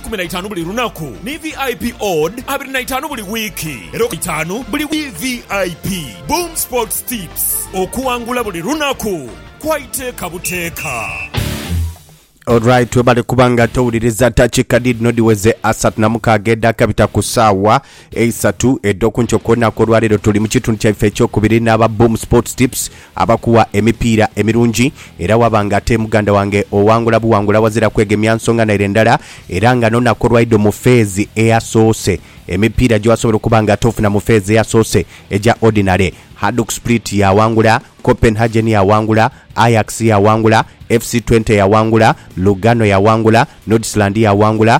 kumi na itaanu buli lunaku ni vip odd abiri na itaanu buli wiiki era itaanu buli vip boom sports tips okuwangula buli lunaku kwa iteeka buteeka Alright webale kuba nga towuliriza takika dhidhino dhiweze asatu na mukaaga edhakabita ku saawa Eisatu edho ku nkyo kwonha kw'olwaleero tuli mu kitundu kyaife ekyokubiri n'aba Boom Sports Tips abakuwa emipiira emirungi era waba nga ate muganda wange owangula buwangula wazira kwegemya nsonga naire ndala era nga n'onaku olwaidho mu feezi eyasoose emipiira gyewasobola okuba nga ate ofuna mu feezi eyasoose egya Ordinary Hajduk Split yawangula, Copenhagen yawangula, Ajax yawangula, FC Twente yawangula, Lugano yawangula, Nordsjland yawangula,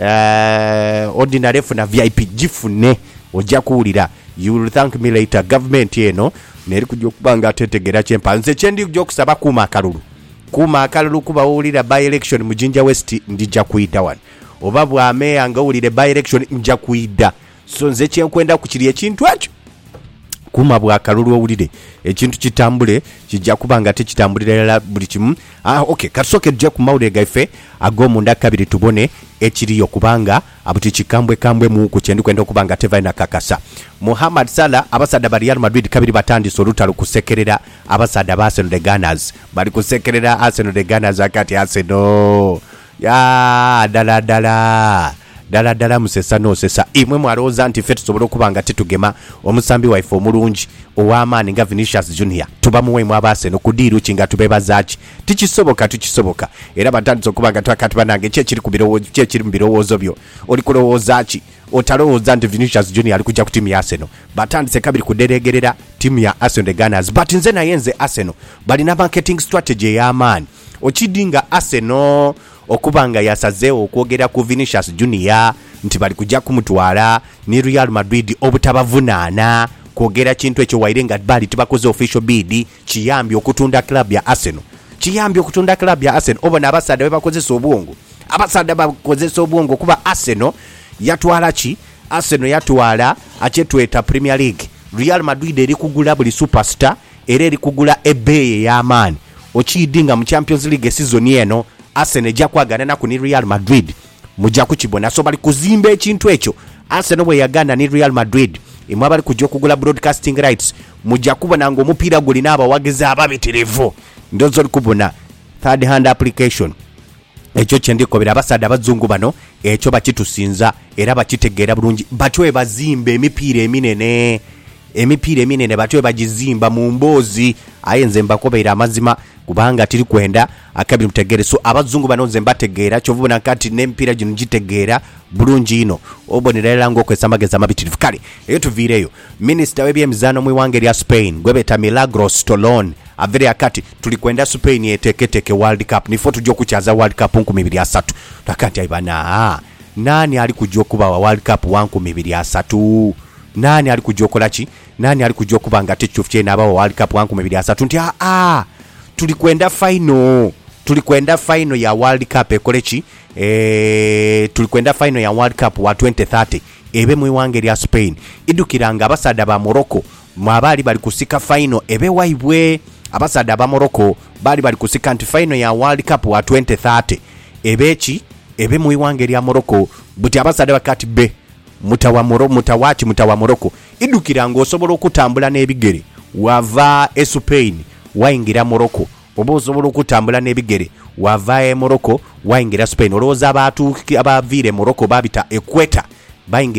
Eeh ordinary funa vip jifune oja kuwulira you will thank me later gavumenti eno neri kuja okuba nga tetegera kyempa nze kyendi kuja okusaba kuuma akalulu kuuma akalulu kuba wowulira by election mu jinja west ndija kwidha wano oba bwa mayor nga owulire by election nja kwidha So nze kye nkwendaku kiri ekintu ekyo, kuuma bwa kalulu owulire ekintu kitambule. Kija kuba nga tikitambulira irala buli kimu. Ah, ok, ka tusooke tuje ku mawulire gaife ag'omunda kabiri tubone ekiriyo, kubanga buti kikambwekambwe muuku kye ndi kwenda okuba nga tevaayo na kakasa. Mohamed Salah, Abasaadha ba Real Madrid kabiri batandise olutalo kusekerera abasaadha ba Arsenal The Gunners. Bali kusekerera Arsenal The Gunners ghagati. Arsenal! Yaa, dala dala. Dala dala musesa n'osesa. Imwe mwalowooza nti ffe tusobola okuba nga titugema omusambi waife omulungi, ow'amaani nga Vinicius Junior? Tubamuwa imwe Abaasenal ku diiru ki? Nga tubeebaza ki? Tikisoboka, tikisoboka. Era batandise okuba nga twaka ati, Banange, ki ekiri ku biro, ki ekiri mu birowoozo byo? Oli kulowooza ki? Otalowooza nti Vinicius Junior ali kuja ku tiimu ya Arsenal? Batandise kabiri kudhereegerera tiimu ya Arsenal, The Gunners. But nze naye nze Arsenal bali na marketing strategy ey'amaani. Okidi nga Arsenal okuba nga yasazeegho okwogera ku Vinicius Junior nti bali kuja kumutwala, ni Real Madrid obutabavunaana kwogera kintu ekyo waire nga bali tibakoze official bid, kiyambye okutunda club ya Arsenal. Kiyambye okutunda club ya Arsenal. Obona abasaadha bwe bakozesa obwongo. Abasaadha bakozesa obwongo kuba Arsenal yatwala ki? Arsenal yatwala kye tweta Premier League. Real Madrid eri kugula buli superstar era eri kugula ebbeeyi ey'amaani. Okiidi nga mu Champions League sizoni eno Arsenal eja kwagananaku ni Real Madrid muja kukibona, so bali kuzimba ekintu ekyo. Arsenal bweyagaana ni Real Madrid, imwe abali kuja okugula broadcasting rights muja kubona nga omupiira gulina abawagizi ababitirivu. Ndhooza ori kubona third hand application Ekyo kye ndikobera abasaadha abazungu bano, ekyo bakitusinza era bakitegeera bulungi. Batyo bwebazimba emipiira eminene. Emipiira eminene batyo bwebagizimba mu mboozi. Aye nze mbakobeire amazima kubanga tiri kwenda akabiri mutegeere. So abazungu bano nze mbategeera, kyova obona kaati n'emipiira gino ngitegeera bulungi inho. Obonera irala ng'okozesa amagezi amabitirivu. Kale eyo tuviireyo. Minisita w'ebyemizaano mu ighanga erya Spain gwebeeta Milagros Tolón aveire akati, Tuli kwenda Spain eteeketeeke World Cup niifo tuja okukyaza World Cup nkumi ibiri asatu. Tulaga nti aye bano aa naani ali kuja okubagha World Cup wa nkumi ibiri asatu? Naani ali kuja okola ki? Naani ali kuja okuba nga ate Cufcei naabagha World Cup wa nkumi ibiri asatu? Nti aa tuli kwenda fayino, tuli kwenda fayino ya World Cup ekole ki? Eeh tuli kwenda fayino ya World Cup wa twenty thirty. ebe mu ighanga erya Spain idhukira nga abasaadha ba Morocco mwabaali bali kusika faino ebe waibwe. Abasaadha aba Morocco baali bali kusika nti faino ya World Cup wa twente thate ebe ki ebe mu ighanga erya Morocco. Buti abasaadha bakati be muta wa Moro muta wa ki muta wa Morocco idhukira nga osobola okutambula n'ebigere wava e Spain waingira Morocco Oba osobola okutambula n'ebigere wava e Morocco waingira Spain. Olowooza abaatuuki abaaviira e Morocco baabita Equator baingira.